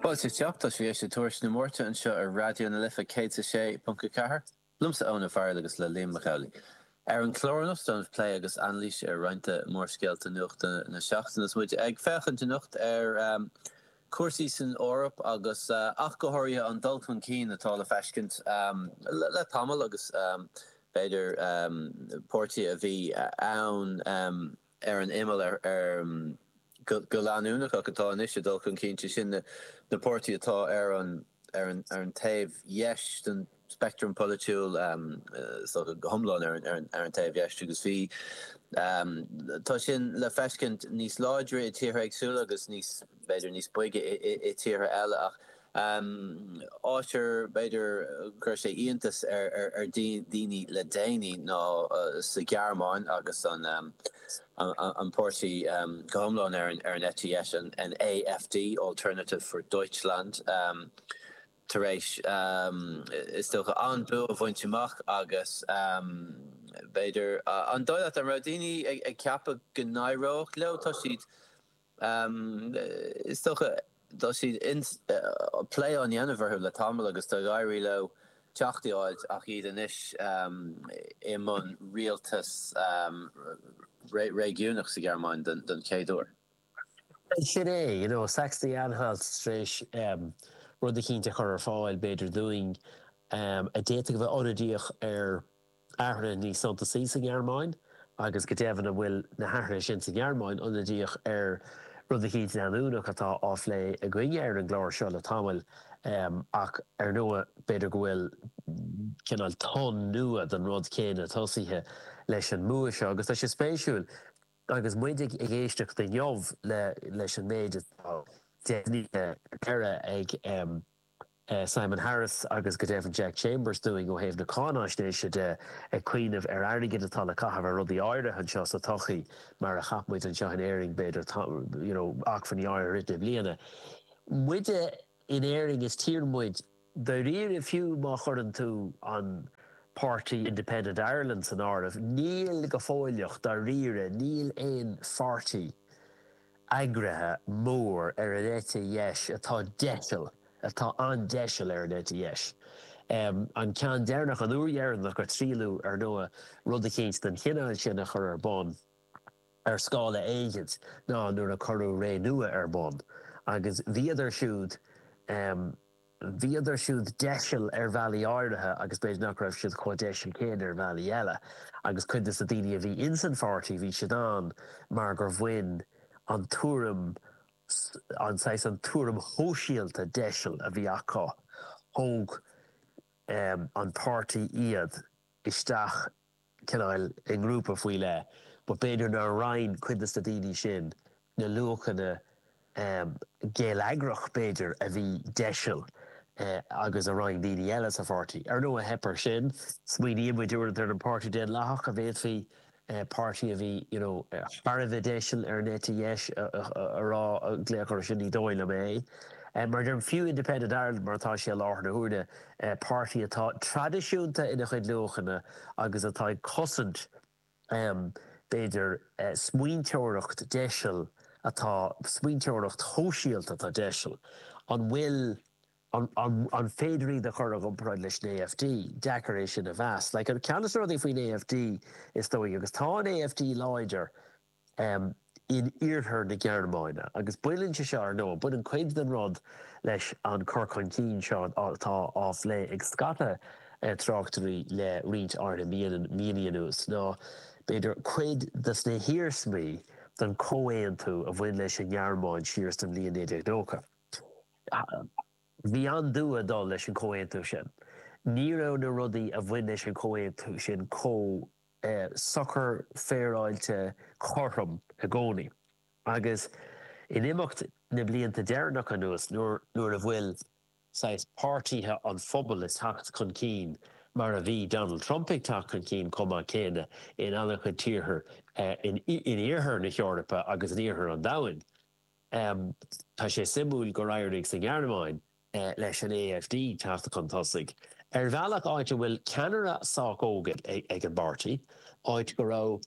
Fáilte isteach, tá sibh ag éisteacht le Tuairisc na Máirte anseo ar Raidió na Life 106.4 liomsa Eoin Farrell agus le Liam Mac Amhlaigh. Ar an chlár anocht ag déanamh plé agus anailís ar roinnt de mhórscéalta nuachta na seachtaine is muid ag féachaint anocht ar chúrsaí san Eoraip agus ach go háirithe an dul chun cinn atá le feiscint le tamall agus b'fhéidir páirtithe a bhí ann ar an imeall go leanúnach ach atá anois ag dul chun cinn, sé sin na páirtithe atá ar an taobh dheis den speictream polaitiúil, go hiomlán ar an taobh dheis, agus bhí, tá sin le feiscint níos láidre i dtíortha éagsúla agus níos, b'fhéidir, níos boige i dtíortha eile ach, An áit ar b'fhéidir go chuir sé iontas ar daoine le déanaí ná sa Ghearmáin agus an páirtí go hiomlán ar an eite dheis, an AfD, Alternative for Deutschland, tar éis, is dócha, an bua a bhaint amach agus, b'fhéidir, an dóigh leat, an raibh daoine ag ceapadh go n-éireodh leo? Tá siad. Is dócha tá, tá plé á dhéanamh orthu le tamall agus tá ag éirí leo teacht i áit ach iad anois i mbun rialtas réigiúnach sa Ghearmáin don chéad uair. Sin é, you know, Sachsen-Anhalt tar éis rud eicínt a chur ar fáil, b'fhéidir, dúinn a d'fhéadfadh a bheith ionadaíoch ar. athruithe níos suntasaí sa nGearmáin agus go deimhin an bhfuil na hathruithe sin sa nGearmáin ionadaíoch ar rud eicínt leanúnach atá á phlé againne ar an gclár seo le tamall ach ar ndóigh b'fhéidir go bhfuil cineál tonn nua den rud céanna tosaithe leis an mbua seo agus tá sé spéisiúil agus muid ag éisteacht inniu leis an méid atá deimhnithe ar deireadh ag Simon Harris agus go deimhin Jack Chambers dúinn ó thaobh na cáinaisnéise de, ag cuimhneamh ar airgead atá le caitheamh ar rudaí áirithe anseo sa todhchaí, mar a chaith muid anseo in Éirinn, b'fhéidir, you know, acmhainní áirithe ar ith i mbliana. Muid in Éirinn, is tír muid, dáiríre, fiú má chuireann tú an páirtí Independent Ireland san áireamh, níl go fóilleach, dáiríre, níl aon pháirtí. eagraithe mór ar an eite dheis atá deiseal, atá an-deiseal ar an eite dheis. An ceann deireanach, an uair dheireanach a triaileadh, ar ndóigh, rud eicínt den chineál sin a chur ar bun, ar scála éigint, ná nuair a cuireadh Renua ar bun. Agus bhíodar siúd. Bhíodar siúd deiseal ar bhealaí áirithe agus b'fhéidir nach raibh siad chomh deiseal céanna ar bhealaí eile. Agus cuid de na daoine a bhí ins an pháirtí, bhí siad ann mar gur bhain an tuairim, an saghas, an tuairim shóisialta deiseal a bhí acu, thóg an páirtí iad isteach cineál i ngrúpa faoi leith, but b'fhéidir nár roinn cuid de na daoine sin na luachanna geilleagrach, b'fhéidir, a bhí deiseal agus a roinn daoine eile sa pháirtí. Ar ndóigh, theip air sin. Smaoiníonn muid uaireanta ar an Páirtí Daonlathach, a bhféadfaí páirtí a bhí, you know, thar a bheith deiseal ar an eite dheis a rá, glaoch air sin, ní dóigh liom é. Mar a deirim, fiú Independent Ireland mar atá sé i láthair na huaire, páirtí atá traidisiúnta ina chuid luachanna agus atá ag cosaint, b'fhéidir, smaointeoireacht deiseal atá, smaointeoireacht shóisialta atá deiseal. An bhfuil, an féidir iad a chur i gcomparáid leis an AfD? Deacair é sin a mheas. Like, ceann de na rudaí faoin AfD, is dóigh, agus tá an AfD láidir, in iarthar na Gearmáine. Agus baineann sé seo, ar ndóigh, baineann cuid den rud leis an chur chun cinn seo atá á phlé ag scata tráchtóirí le roinnt áirithe míonna anuas, nó b'fhéidir cuid de na hiarsmaí den chomhaontú a bhain leis an nGearmáin siar sa bhliain 1990. Bhí an-dua ag dul leis an chomhaontú sin. Ní raibh na rudaí a bhain leis an chomhaontú sin chomh. socair féaráilte cothrom i gcónaí agus in imeacht na blianta deireanacha anuas nuair a bhfuil saghas páirtithe an phobail ag teacht chun cinn mar a bhí Donald Trump ag teacht chun cinn chomh maith céanna in an-chuid tíortha in iarthar na hEorpa agus in iarthar an domhain. Tá sé suimiúil gur éirigh sa nGearmáin leis an AfD teacht chun tosaigh, ar bhealach, áit a bhfuil ceannaire sách óg ag an bpáirtí, áit go raibh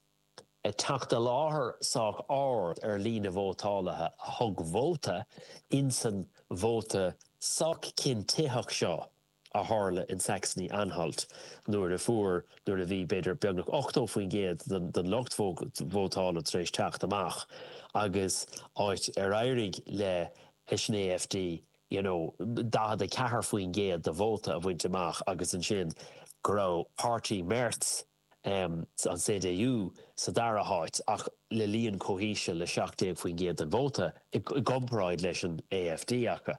teacht i láthair sách ard ar líon na vótálaithe a thug vóta insan vóta sách cinntitheach seo a tharla in Saxony-Anhalt nuair a fuair, nuair a bhí, b'fhéidir, beagnach 80% den lucht vótála tar éis teacht amach agus áit ar éirigh le. leis an AfD, you know, 44% de vóta a bhaint amach agus ansin go raibh páirtí Merz, em, an CDU sa dara háit ach le líon chomh híseal le 17% den vóta i gcomparáid leis an AfD acu.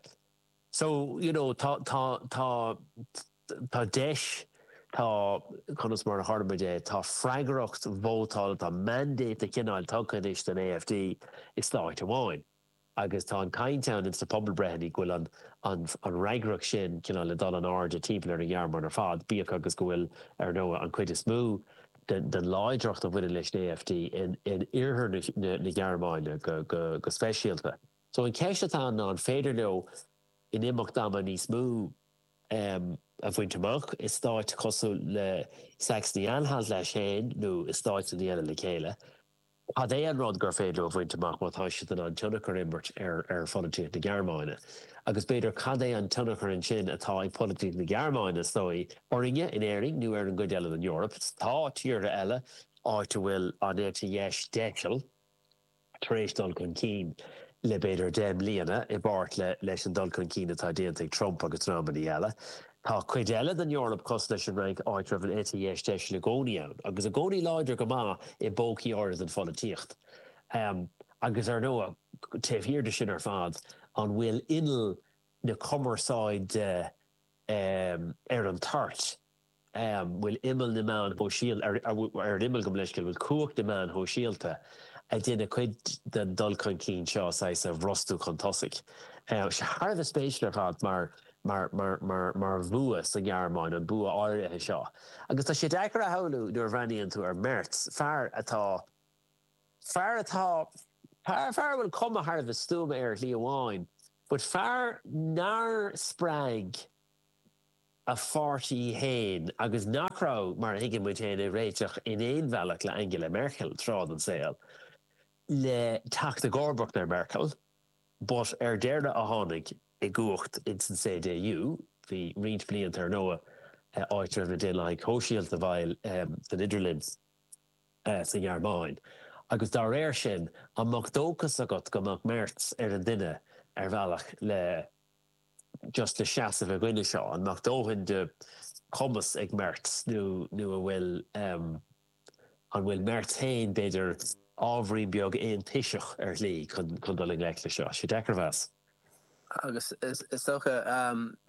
So, you know, tá, tá, tá, tá deis, tá, conas mar a chuirfidh muid é, tá freagracht vótála, tá mandate de chineál tugtha anois don AfD i stáit amháin. agus tá an chaint ann insna pobalbreitheanna go bhfuil an fhreagracht sin cineál ag dul in airde timpeall ar an Ghearmáin ar fad, bíodh agus go bhfuil, ar ndóigh, an chuid is mó den láidreacht a bhaineann leis an AfD in oirthear na Gearmáine go speisialta. So an cheist atá ann ná an féidir leo in imeacht ama níos mó a bhaint amach i stáit cosúil le Sachsen-Anhalt leis féin nó i stáit éigin eile le chéile? Cad é an rud gur féidir leo a bhaint amach má tá siad in ann tionchar a imirt ar pholaitíocht na Gearmáine? Agus b'fhéidir, cad é an tionchar ansin atá ag polaitíocht na Gearmáine, is dóigh, orainne in Éirinn nó ar an gcuid eile den Eoraip? Tá tíortha eile, áit a bhfuil an eite dheis dheisil, tar éis dul chun cinn le b'fhéidir deich mbliana, i bpáirt leis an dul chun cinn atá déanta ag Trump agus dreamanna eile. Tá cuid eile den Eoraip cosúil leis an Fhrainc, áit a raibh an eite dheis dheisil i gcónaí ann, agus i gcónaí láidir go maith i bpócaí áirithe den pholaitíocht. Agus ar ndóigh, taobh thiar de sin ar fad, an bhfuil inneall na cumarsáide ar an toirt? An bhfuil imeall na meáin shóisialta ar an imeall go mb'leisce? An bhfuil cumhacht na meáin shóisialta, ag déanamh cuid den dul chun cinn seo saghas a bhrostú chun tosaigh? Tá sé thar a bheith spéisiúil ar fad, mar. mar, mar, mar, mar bhua sa nGearmáin, an bua áirithe seo. Agus tá sé deacair a shamhlú, nuair a bhreathnaíonn tú ar Merz, fear atá, fear atá, fear, fear a bhfuil cuma thar a bheith stuama air ar shlí amháin, but fear nár spreag a pháirtí féin agus nach raibh, mar a thuigeann muid féin, ag réiteach in aon bhealach le Angela Merkel, tráth den tsaol, le teacht i gcomharbacht ar Merkel, but ar deireadh a tháinig. i gcumhacht ins an CDU bhí roinnt blianta ar ndóigh áit a raibh na Daonlathaigh Shóisialta i bhfeighil san idirlinn sa nGearmáin agus dá réir sin an mbeadh dóchas agat go mbeadh Merz ar an duine ar bhealach le just le seasamh i gcoinne seo? An mbeadh dóthain de chumas ag Merz nó an bhfuil. An bhfuil Merz féin, b'fhéidir, ábhairín beag aontoiseach ar shlí chun dul i ngleic leis seo? Is deacair a mheas. Agus is dócha,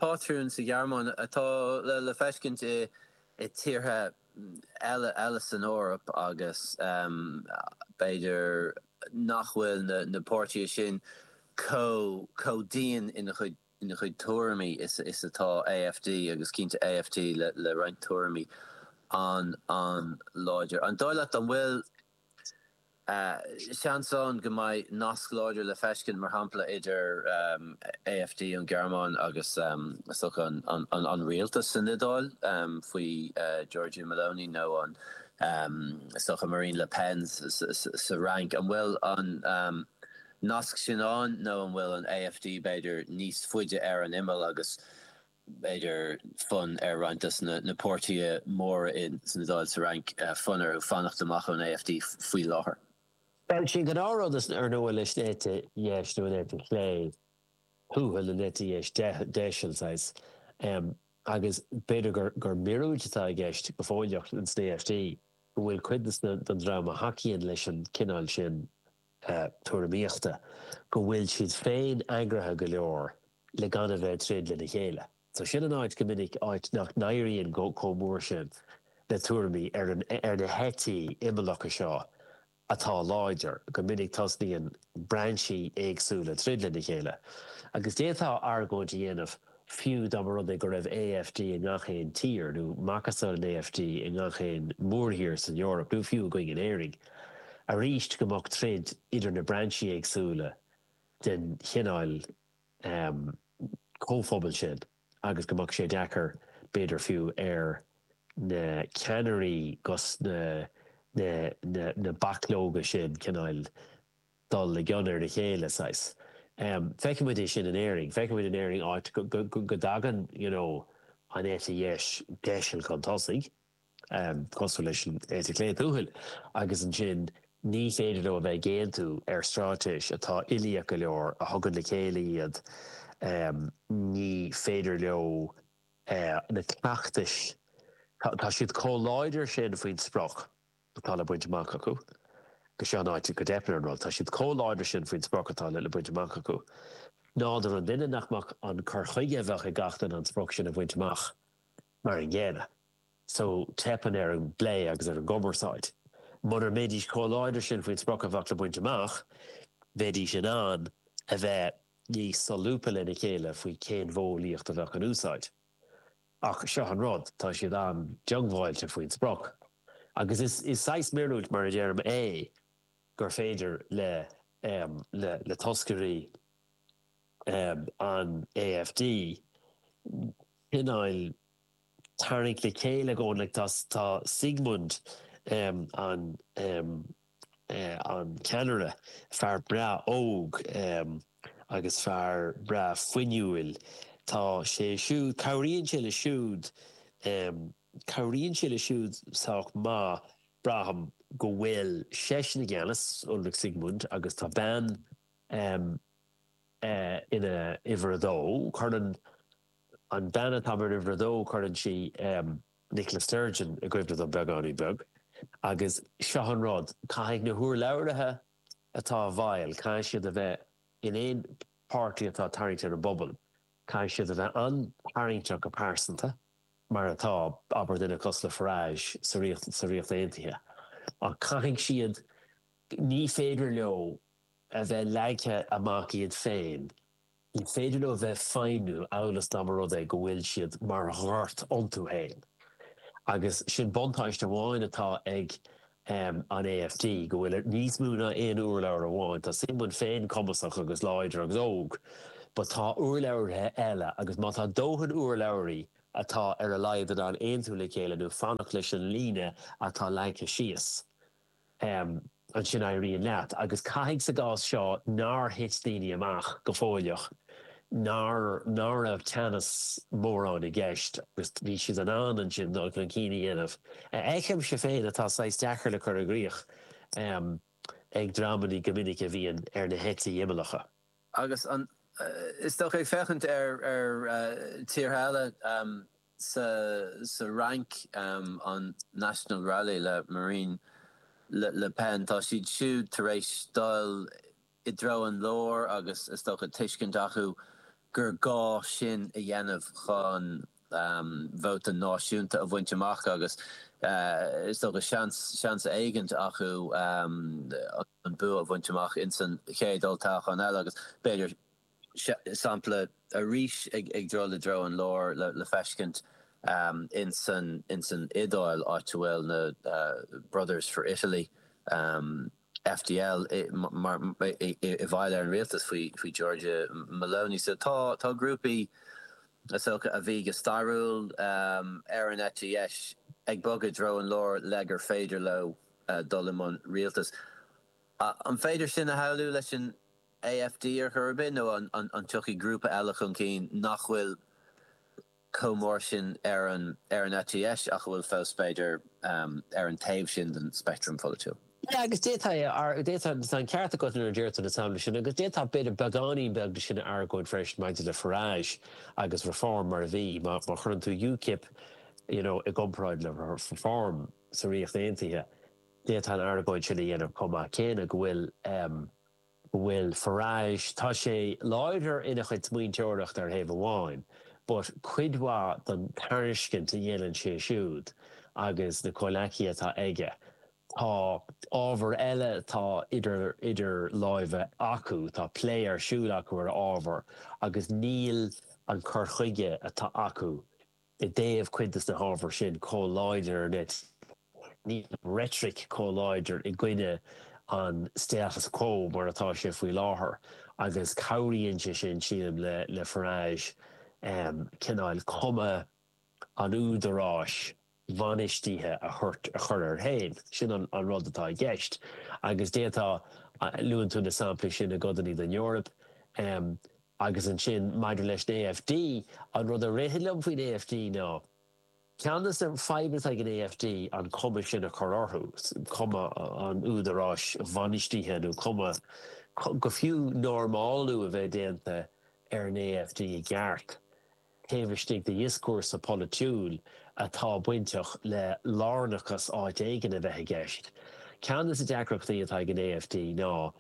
pátrún sa Ghearmáin atá le feiscint i tíortha eile san Eoraip agus b'fhéidir nach bhfuil na páirtithe sin chomh dian ina gcuid ina chuid tuairimí is atá AfD, agus cinnte AfD le roinnt tuairimí an- an-láidir. An dóigh leat an bhfuil seans ann go mbeidh nasc láidir le feiscint, mar shampla, idir AfD ón Ghearmáin agus an rialtas is dócha san Iodáil faoi Giorgia Meloni nó is dócha Marine Le Pen sa Fhrainc? An bhfuil an. Nasc sin ann, nó an bhfuil an AfD, b'fhéidir, níos faide ar an imeall agus, b'fhéidir, fonn ar roinnt de na páirtithe móra san Iodáil, sa Fhrainc, fonn orthu fanacht amach ón AfD faoi láthair. Bhuel, sin gnáthrud is ardnua leis an eite dheis, nó an eite chlé thuathail, an eite dheis deisil, saghas, agus b'fhéidir gur míorúilt atá i gceist go fóilleach insan AfD, go bhfuil cuid den dream a thacaíonn leis an chineál sin tuairimíochta go bhfuil siad féin eagraithe go leor le gan a bheith ag troid lena chéile. So sin an áit go minic, áit nach n-éiríonn chomh mór sin le tuairimí ar na heití imeallacha seo atá láidir, go minic tosnaíonn brainsí éagsúla ag troid lena chéile. Agus d'fhéadfá argóint a dhéanamh, Fiú dá mba rud é go raibh AfD i ngach aon tír, nó macasamhail an AfD i ngach aon mhórthír san Eoraip, nó fiú againn in Éirinn, arís go mbeadh troid idir na brainsí éagsúla den chineál comhphobail sin agus go mbeadh sé deacair, b'fhéidir fiú, ar na ceannairí gus na bachlóga sin cineál. dul i gcion ar a chéile, saghas. Feicfidh muid é sin in Éirinn. Feicfidh muid in Éirinn áit go dtagann, you know, an eite dheis deiseal chun tosaigh, cosúil leis an eite chlé tuathail, agus ansin ní féidir leo a bheith ag aontú ar straitéis atá uilíoch go leor, a thugann le chéile iad. Ní féidir leo na cleachtais, tá siad chomh láidir sin faoin sprioc, atá le baint amach acu. Agus seo an áit go dteipeann ar an rud, tá siad chomh láidir sin faoin sprioc atá le baint amach acu, nádúr an duine, nach mbeadh an cur chuige a bheadh ag gach duine an sprioc sin a bhaint amach mar an gcéanna. So, teipeann ar an bplé agus ar an gcumarsáid. Mura mbeidís chomh láidir sin faoin sprioc a bheadh le baint amach, bheidís in ann a bheith níos solúbtha lena chéile faoi cén mhodheolaíocht a bheadh in úsáid. Ach seo an rud, tá siad an-diongbháilte faoin sprioc. Agus is saghas míorúilt, mar a deirim, é gur féidir le toscairí an AfD cineál tarraingt le chéile i gcomhluadar. Tá Siegmund an. an ceannaire, fear breá óg agus fear breá fuinniúil, tá sé siúd, cabhraíonn sé leis siúd, cabhraíonn sé leis siúd sách maith, braithim, go bhfuil seisean i gceannas, Ulrich Siegmund, agus tá bean ina uimhir a dó, cuireann an bhean atá mar uimhir a dó, cuireann sí. Nicola Sturgeon i gcuimhne don bheagáinín bheag. Agus seo an rud, caithfidh na hurlabhraithe atá i bhfeighil, caithfidh siad a bheith, aon pháirtí atá tarraingteach don bpobal, caithfidh siad a bheith an-tarraingteach go pearsanta, mar atá, abair, duine cosúil le Farage sa Ríocht, sa Ríocht Aontaithe. Ach caithfidh siad, ní féidir leo a bheith leagtha amach iad féin. Ní féidir leo bheith ag feidhmiú amhail is dá mba rud é go bhfuil siad mar ghort iontu féin. Agus sin buntáiste amháin atá ag an AfD, go bhfuil níos mó ná aon urlabhraí amháin. Tá Siegmund féin cumasach agus láidir agus óg, but tá urlabhraithe eile, agus má tá dóthain urlabhraithe atá ar a laghad in ann aontú le chéile nó fanacht leis an líne atá leagtha síos, ansin éiríonn leat. Agus caithfidh sa gcás seo nár thit daoine amach go fóill nuair ná raibh teannas mórán i gceist agus bhí siad in ann ansin dul chun cinn a dhéanamh, a fheicimse féin atá saghas deacair le cur i gcrích ag dreamannaí go minic a bhíonn ar na heití imeallacha. Agus is dócha ag féachaint ar tíortha eile. Sa Fhrainc, an National Rally le Marine Le Pen, tá siad siúd tar éis dul i dtreo an láir agus, is dócha, tuiscint acu gur gá sin a dhéanamh chun vóta náisiúnta a bhaint amach agus, is dócha, seans éigint acu an bua a bhaint amach insan chéad olltoghchán eile agus, b'fhéidir, sampla arís ag dul i dtreo an láir le feiscint insan Iodáil, áit a bhfuil na Brothers for Italy, FdI, i bhfeighil ar an rialtas faoi Giorgia Meloni. So tá grúpaí is dócha a bhí go stairiúil ar an eite dheis ag bogadh i dtreo an láir le gur féidir leo dul i mbun rialtais. An féidir sin a shamhlú leis an AfD ar chor ar bith, nó an dtiocfaidh grúpa eile chun cinn nach bhfuil chomh mór sin ar an eite dheis ach a bhfuil fós, b'fhéidir, ar an taobh sin den speictream polaitiúil? Sea, agus d'fhéadfá, d'fhéadfá, agus tá an ceart agat nuair a deir tú na samplaí sin, agus d'fhéadfá, b'fhéidir, beagáinín beag de sin a argóint freisin maidir le Farage agus Reform mar a bhí. Má chuireann tú UKIP, you know, i gcomparáid le Reform sa Ríocht Aontaithe, d'fhéadfá an argóint sin a dhéanamh chomh maith céanna, go bhfuil, go bhfuil Farage, tá sé láidir ina chuid smaointeoireachta ar thaobh amháin, but cuid mhaith den tairiscint a dhéanann sé siúd agus na comhghleacaithe atá aige, tá ábhar eile atá idir idir láimhe acu, tá plé ar siúl acu ar ábhar agus níl an cur chuige atá acu i dtaobh cuid de na hábhair sin chomh láidir ná nach bhfuil. Níl an reitric chomh láidir i gcoinne an status quo mar atá sé faoi láthair agus cabhraíonn sé sin, sílim, le Farage cineál cuma an údaráis bhainistithe a chur air féin. Sin an rud atá i gceist. Agus d'fhéadfá, luann tú na samplaí sin i gcodanna den Eoraip. Agus ansin, maidir leis an AfD, an rud a ritheann liom faoin AfD ná, ceann de na fadhbanna atá ag an AfD an chuma sin a chur orthu, cuma an údaráis bhainistithe nó cuma, go fiú, normálú a bheith déanta ar an AfD i gceart, taobh istigh de dhioscúrsa polaitiúil atá bainteach le lárnachas áit éigin a bheith i gceist. Ceann de na deacrachtaí atá ag an AfD ná.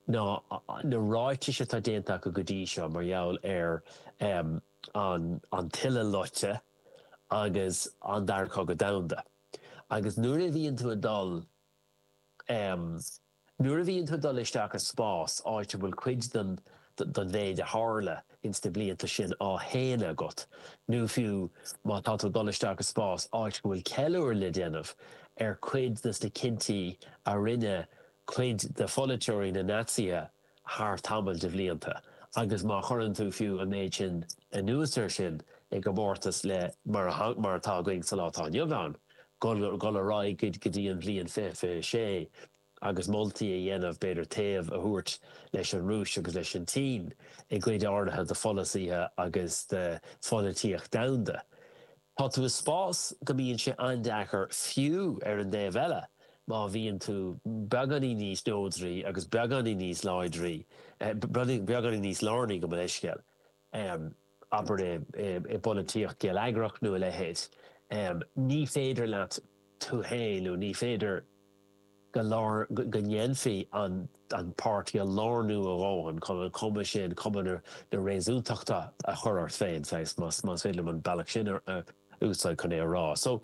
ná na ráitis atá déanta acu go dtí seo mar gheall ar an Uileloscadh agus an Dara Cogadh Domhanda. Agus nuair a bhíonn tú ag dul, nuair a bhíonn tú ag dul isteach i spás, áit a bhfuil cuid den mhéid a tharla ins na blianta sin á shéanadh agat, nó fiú má tá tú ag dul isteach i spás, áit go bhfuil ceiliúradh le déanamh ar cuid de na cinntí a rinne cuid de pholaiteoirí na Naitsithe thar tamall de bhlianta, agus má chuireann tú fiú an méid sin anuas air sin i gcomórtas le mar atá againn sa lá atá inniu ann, dhul ar aghaidh go dtí an bhliain 2026 agus moltaí a dhéanamh, b'fhéidir, taobh a thabhairt leis an Rúis agus leis an tSín i gcuid áirithe de pholasaithe agus de pholaitíocht domhanda. Tá tú i spás go mbíonn sé an-deacair fiú ar an dtaobh eile má bhíonn tú beagáinín níos neodraí agus beagáinín níos láidrí, beagáinín níos lárnaí gabh mo leithscéal, abair i bpolaitíocht geilleagrach nó a leithéid, ní féidir leat tú féin nó ní féidir. go ndéanfaí an páirtí a lárnú a dhóthain chun an chuma sin, cuma na réasúntachta, a chur ort féin, saghas, más féidir liom an bealach sin a úsáid chun é a rá. So,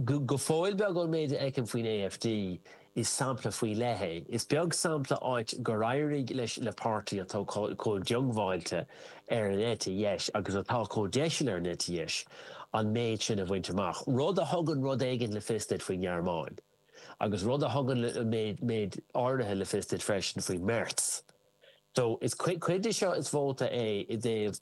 go fóill beag, ón méid a fheicim faoin AfD, is sampla faoi leith é. Is beag sampla áit gur éirigh leis na páirtithe atá chomh diongbháilte ar an eite dheis agus atá chomh deiseal ar an eite dheis an méid sin a bhaint amach, rud a thugann rud éigin le fios duit faoin nGearmáin, agus rud a thugann méid áirithe le fios duit freisin faoi Merz. So, is cuid de seo is vóta é i dtaobh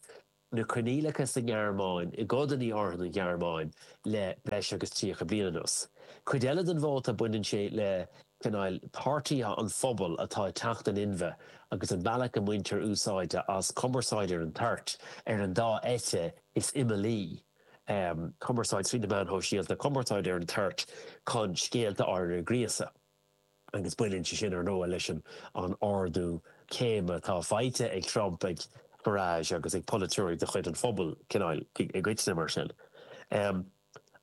na coinníollacha sa nGearmáin, i gcodanna áirithe den Ghearmáin, le breis agus 30 bliain anuas. Cuid eile den vóta, baineann sé le. cineál páirtithe an phobail atá ag teacht in inmhe agus an bealach a mbaintear úsáid as cumarsáid ar an toirt ar an dá eite is imeallaí, cumarsáid trí na meáin shóisialta, cumarsáid ar an toirt chun scéalta áirithe a ghríosadh. Agus baineann sé sin, ar ndóigh, leis an ardú céime atá faighte ag Trump, ag Farage agus ag polaiteoirí de chuid an phobail, cineál, i gcoitinne, mar sin.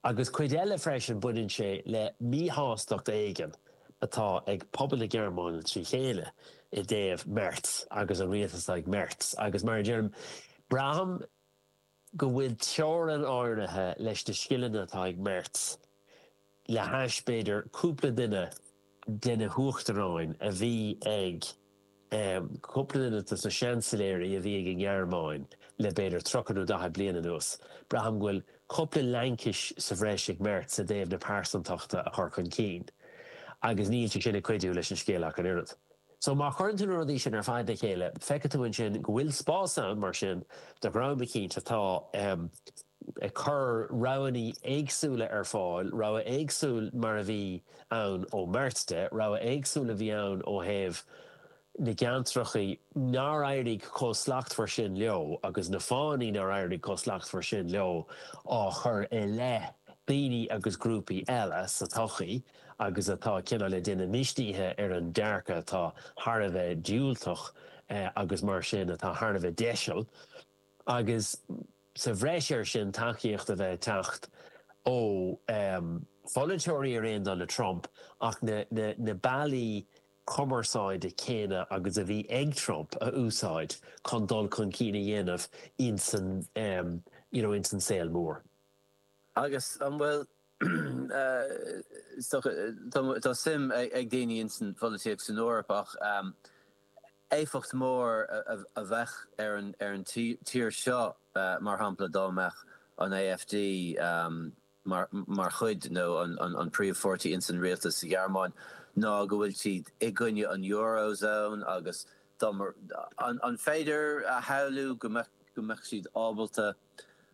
Agus cuid eile freisin, baineann sé le míshástacht éigin atá ag pobal na Gearmáine trí chéile i dtaobh Merz agus an rialtas atá ag Merz. Agus mar a deirim, braithim go bhfuil teorainn áirithe leis na scileanna atá ag Merz, le hais, b'fhéidir, cúpla duine de na huachtaráin a bhí ag cúpla duine dos na seansailéirí a bhí ag an nGearmáin le b'fhéidir tríocha nó daichead bliain anuas, braithim go bhfuil cúpla laincis sa bhreis ag Merz i dtaobh na pearsantachta a chur chun cinn, agus níl sé sin ag cuidiú leis an scéal ach an oiread. So, má chuireann tú na rudaí sin ar fad le chéile, feicfidh tú ansin go bhfuil spás ann, mar sin, do dhream eicínt atá ag cur roghanna éagsúla ar fáil, rogha éagsúil mar a bhí ann ó Merz de, rogha éagsúil a bhí ann ó thaobh na gceantracha nár éirigh chomh slachtmhar sin leo agus na fáthanna nár éirigh chomh slachtmhar sin leo á chur i leith daoine agus grúpaí eile sa tsochaí. agus atá cineál le daoine misnithe ar an dearcadh atá thar a bheith diúltach agus mar sin atá thar a bheith deiseal, agus sa bhreis air sin tacaíocht a bheith ag teacht ó pholaiteoirí ar aon dul le Trump ach na bealaí cumarsáide céanna agus a bhí ag Trump a úsáid chun dul chun cinn a dhéanamh insan saol mór. Agus an bhfuil, is dócha, tá suim ag daoine ins an pholaitíocht san Eoraip ach éifeacht mór a bheadh ar an tír seo mar shampla dá mbeadh an AfD mar chuid nó an príomh pháirtí ins an rialtas sa Ghearmáin ná go bhfuil siad i gcoinne an Euro zone agus dá mbeadh, an féidir a shamhlú go mbeadh siad ábalta.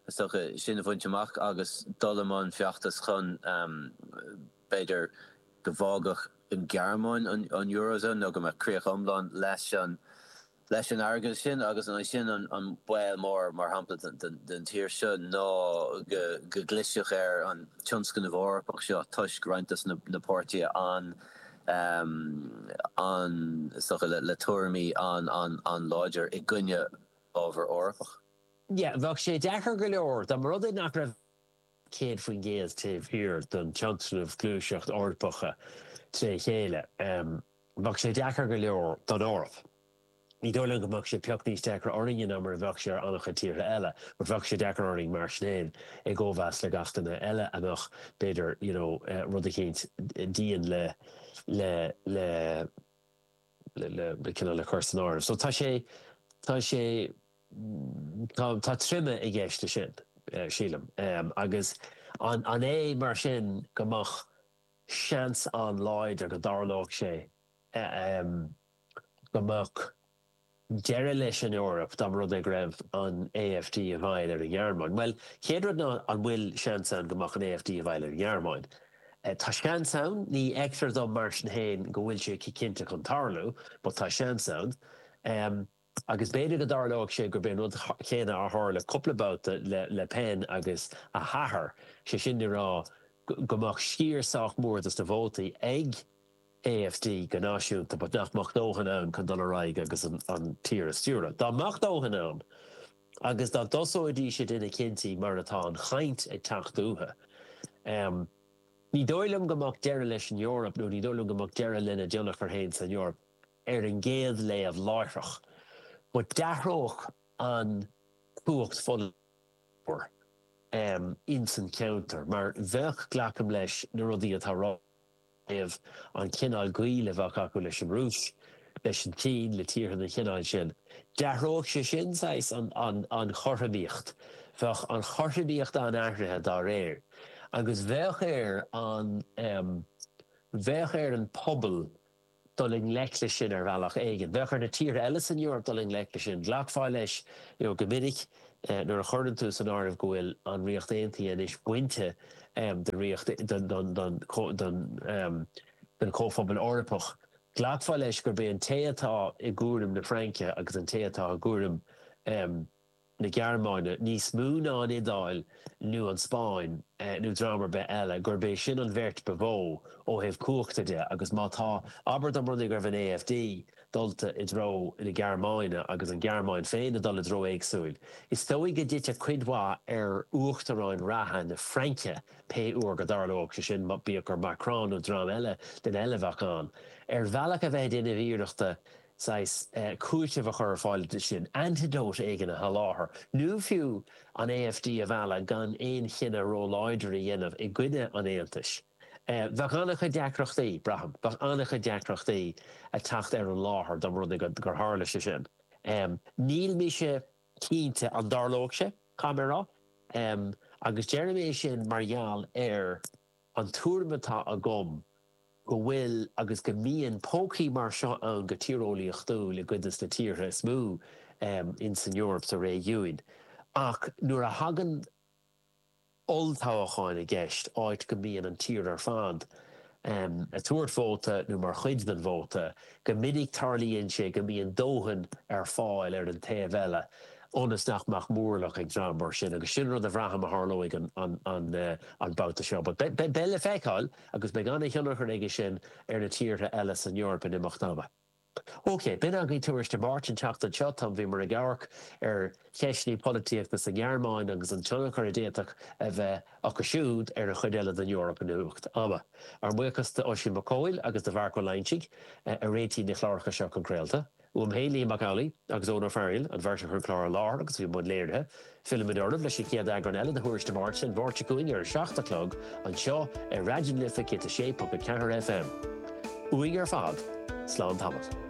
is dócha, sin a bhaint amach agus dul i mbun feachtais chun, b'fhéidir, go bhfágfadh an Ghearmáin an Eurozone nó go mbeadh críoch iomlán leis an airgead sin agus ansin an baol mór, mar shampla, don tír seo ná go gclisfeadh ar an tionscnamh Eorpach seo toisc roinnt dos na páirtithe, um, is dócha, le tuairimí an-láidir i gcoinne ábhar Eorpach. Bheadh sé deacair go leor, dá mba rud é nach raibh 100% taobh thiar den tionscnamh gluaiseacht Eorpach trí chéile, bheadh sé deacair go leor don Eoraip. Ní dóigh liom go mbeadh sé pioc níos deacra orainne ná mar a bheadh sé ar an-chuid tíortha eile, but bheadh sé deacair orainn mar sin féin i gcomhéis le gach duine eile ach mbeadh, b'fhéidir, you know, rud eicínt dian le, le, le. le cineál le cur san áireamh. So tá sé, tá sé, tá, tá troime i gceist leis sin, sílim. Agus an, an é mar sin go mbeadh seans an-láidir go dtarlódh sé, go mbeadh deireadh leis an Eoraip dá mba rud é go raibh an AfD i bhfeighil ar an nGearmáin? Bhuel, chéad rud ná an bhfuil seans ann go mbeadh an AfD i bhfeighil ar an nGearmáin? Tá seans ann, ní fheictear dom mar sin féin go bhfuil sé cinnte chun tarlú, but tá seans ann. Agus b'fhéidir go dtarlóidh sé gurb é an rud céanna a tharla cúpla babhta le Le Pen agus a hathair, sé sin le rá go mbeadh sciar sách mór dos na vótaí ag AfD go náisiúnta but nach mbeadh dóthain ann chun dul ar aghaidh agus an tír a stiúradh. Dá mbeadh dóthain ann agus dá dtosóidís ag déanamh cinntí mar atá an chaint ag teacht uathu, ní dóigh liom go mbeadh deireadh leis an Eoraip nó ní dóigh liom go mbeadh deireadh lena dtionchar féin san Eoraip ar an gcéad léamh láithreach but d'athródh an chumhacht pholaitiúil ins an cheantar mar bheadh, glacaim leis, na rudaí atá ráite. thaobh an cineál gaoil a bheadh acu leis an Rúis, leis an tSín, le tíortha den chineál sin. D'athródh sé sin saghas an chothromaíocht. Bheadh an chothromaíocht an-athraithe dá réir. Agus bheadh ar an, bheadh ar an bpobal dul i ngleic leis sin ar bhealach éigin. Bheadh ar na tíortha eile san Eoraip dul i ngleic leis sin. Ghlacfá leis go minic nuair a chuireann tú san áireamh go bhfuil an Ríocht Aontaithe anois bainte den Chomhphobal Eorpach, ghlacfá leis gurb é an té atá i gcúram na Fraince agus an té atá i gcúram. na Gearmáine níos mó ná an Iodáil nó an Spáinn nó dream ar bith eile, gurb é sin an bheirt ba mhó ó thaobh cumhachta de agus má tá, abair dá mba rud é go raibh an AfD dulta i dtreo na Gearmáine agus an Ghearmáin féin ag dul i dtreo éagsúil. Is dóigh go dtitfeadh cuid mhaith ar uachtarán reatha na Fraince pé uair go dtarlódh sé sin, bíodh gur Macron nó dream eile a bheadh ann. Ar bhealach a bheith ag déanamh iarrachta, saghas cúitimh a chur ar fáil dó sin, antidote éigin a sholáthar, nó fiú an AfD a mhealladh gan aon chinneadh róláidir a dhéanamh i gcoinne an Aontais. Bheadh an-chuid deacrachtaí, braithim, bheadh an-chuid deacrachtaí ag teacht ar an láthair dá mba rud é gur tharla sé sin. Níl mise cinnte an dtarlódh sé, caithfidh mé a rá, agus deirim é sin mar gheall ar, An tuairim atá agam go bhfuil agus go mbíonn pócaí mar seo ann go tíreolaíochtúil i gcuid de na tíortha is mó in san Eoraip, sna réigiúin. Ach nuair a thagann olltoghacháin i gceist, áit go mbíonn an tír ar fad ag tabhairt vóta nó mar chuid den vóta, Go minic tarlaíonn sé go mbíonn dóthain ar fáil ar an taobh eile ionas nach mbeadh móramh ag dream mar sin agus sin rud a bhraithim a tharlóidh an babhta seo. But beidh le feiceáil agus beidh an-thionchar aige sin ar na tíortha eile san Eoraip in imeacht ama. OK, b'in agaibh Tuairisc na Máirte an tseachtain seo. Táim, bhíomar ag amharc ar. cheisteanna polaitíochta sa nGearmáin agus an tionchar a d'fhéadfadh a bheith acu siúd ar an chuid eile den Eoraip in imeacht ama. Ár mbuíochas d'Oisín Mac Cumhaill agus do Mharc Ó Loingsigh a réitigh na cláracha seo chun craolta. Uaim féin, Liam Mac Amhlaigh agus Eoghan Ó Fearghail, an bheirt a chuir an clár i láthair agus a bhí i mbun léirithe, fillimid oraibh leis an chéad eagrán eile de Thuairisc na Máirte an Mháirt seo chugainn ar a seacht a chlog anseo ar Raidió na Life 106.4 FM. Uainn ar fad, slán tamall.